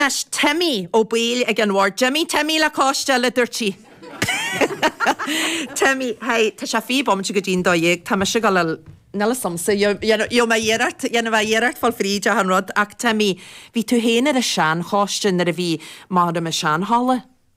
Anois Timmy Ó Baoill ag an bhord. Jimmy, Timmy le cloisteáil, a dúirt sí. Timmy, Haigh, tá sé fiche bomaite go dtí an dó dhéag, tá mise ag goil, níl 'fhios agamsa, gheobhaidh mé iarracht, dhéanfaidh mé iarracht fáil fríd achan rud, ach Timmy, bhí tú féin ar an sean-chóiste nuair a bhí, muid amuigh sa seanhalla.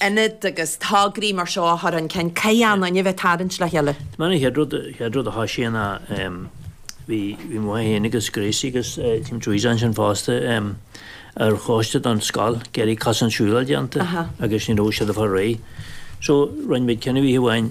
ionad agus tograí mar seo a chur chun cinn, caithfidh daoine a bheith ag tarraingt le chéile. Mar an chéad rud, chéad rud a thoisigh é ná bhí bhí mé fhéin agus Gracie agus Tim Teresa ansin fosta ar choiste don scoil, ag iarraidh cosán siúil déanta agus ní raibh siad ag fáil réidh so rinne muid cinneadh oíche amháin,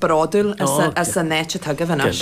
bródúil as an áit atá agaibh anois.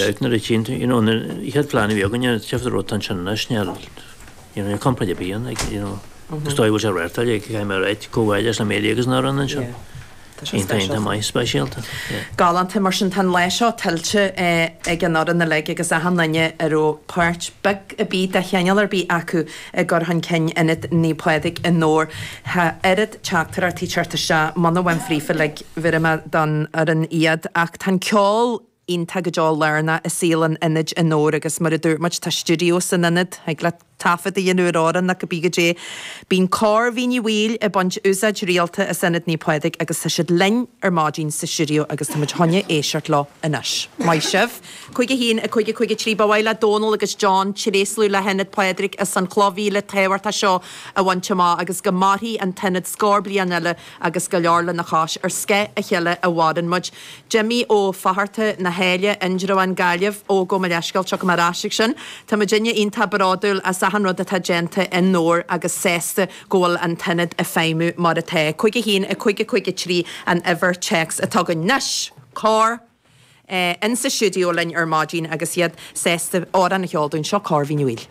Galánta, mar sin, tá an lá seo tuillte ag an fhoireann uilig agus achan duine a raibh páirt bheag ar bith, de chineál ar bith acu i gcur chun cinn Ionad Naomh Pádraig i nDobhar. Tá oiread teachtaireachtaí ag teacht isteach, muna bhfaighim fríofa uilig. bhéarfaidh mé don fhoireann iad, ach tá an ceol iontach go deo lárnach i saol an Ionaid i nDobhar agus mar a dúirt muid, tá stiúideo san Ionad, thig leat taifead a dhéanamh ar amhrán nó cibé caidé. Bíonn cór Mhín Uí Bhaoill ag baint úsáid rialta as Ionad Naomh Pádraig agus tá siad linn ar maidin sa stiúideo agus tá muid chun éisteacht leo anois. Maith sibh! 51553, Ba mhaith le Dónal agus John tréaslú le hIonad Phádraig as an chloch mhíle thábhachtach seo a bhaint amach agus go mairfidh an tIonad scór bliain eile agus go leor lena chois, ar scáth a chéile a mhaireann muid. Jimí Ó Fátharta, Na hAille, Indreabhán, Gaillimh. Ó gabh mo leithscéal, tiocfaidh mé ar ais aige sin. Tá muidinne iontach bródúil as achan rud atá déanta i nDobhar agus sásta go bhfuil an t-ionad ag feidhmiú mar atá. 51553 an uimhir téacs atá againn anois. Cór, e, insa stiúideo linn ar maidin agus iad sásta amhrán a cheol dúinn. Seo Cór Mhín Uí Bhaoill.